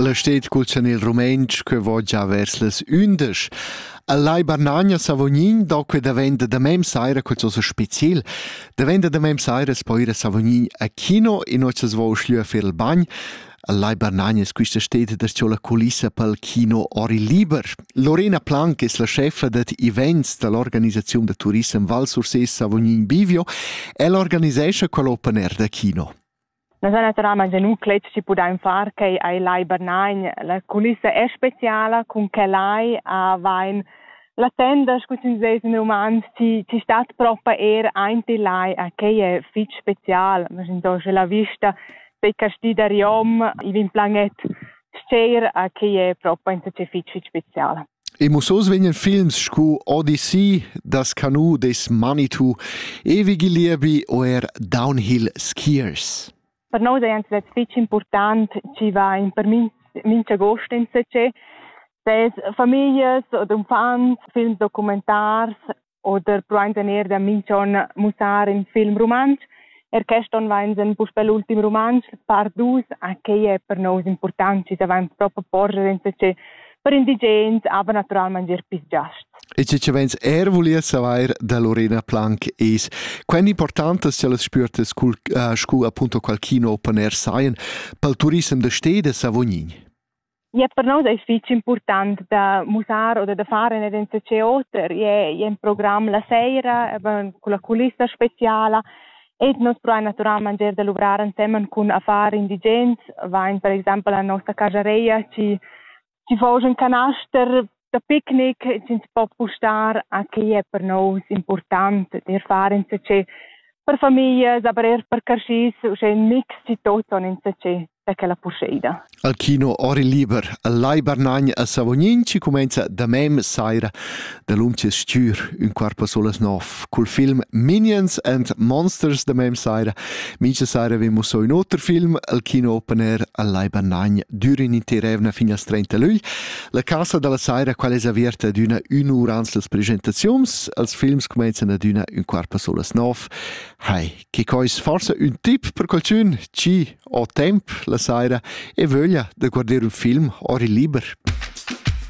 La sted cul chanel rumentsch que vo già vers las ündesch. A Lai Barnagna Savognin do que daventa da mem saira qualcosa speciel. Daventa da mem saira es poi ir a Savognin a kino e noi s'as vo schlieu a fer il bagn. A Lai Barnagna es quista steda da sco la culissa pel kino Ori Liber. Lorena Plank es la chefa dad events da l'organisaziun da turissem Val Sursés Savognin Bivio e l'organisescha quell open air da kino. La zona Tramags e nu clet chi pudain far quai ai Lai Bernagn. La culissa è speciala, cun che lai avain la tenda, scu sün seis in roman, chi, chi stat propa eir aint il lai, a quai è fich special. Maginto sche la vista dei castì da Riom, i vin planet, sceir a quai è propa insatge fich, fich special. E mussos vegnan films scu Odyssey, Das Canoe des Manitou, Ewige Liebe o er Downhill Skiers. Per noi è anzi fitg important, ci va in per mincha gost in se, ses famiglias od umfants, films documentars, oder pruaintan eir da minch'on mussar ün film rumantsch. Er quest on vainsan puspè l'ultim rumantsch, par dus, a quai è per nous important, chi savain propo porger insacè per indigens, aber naturalmente er pis giast. E ce vens er volia savoir da Lorena Planck es quant importante se las spürtas cul uh, scu appunto qualchino open air saien pel turissem da steda Savognin. Ja, per nos è fitg important da musar oder da fare nicht in Theater. Je, je im Programm la sera, con la culissa speciala. E nos pro naturalment er da luvrar insieme con affari indigents. Vain per esempio la nostra casareia ci ci foge un canaster da picnic ins po pustar a quei è per nous important d'ir far insatge per familias, aber er per carschis, uschè ein mix di toton insatge da quella purscheida. Al kino Ori Liber, al Lai Barnagn a Savognin ci comenza da mem saira da lunches stür un quarpo solas nov cul film Minions and Monsters da mem saira. Mincha saira vemo so un oter film al kino open air al Lai Barnagn dürin inter evna fin als 30 luglio. La cassa dalla saira quella es averta adüna ün ur ans las presentaziuns, els films cumainzan adüna ün quart pa solas nov. Hai, che coi es forsa ün tip per qualchün, chi ho temp la saira e vöglia da guarder ün film ori liber.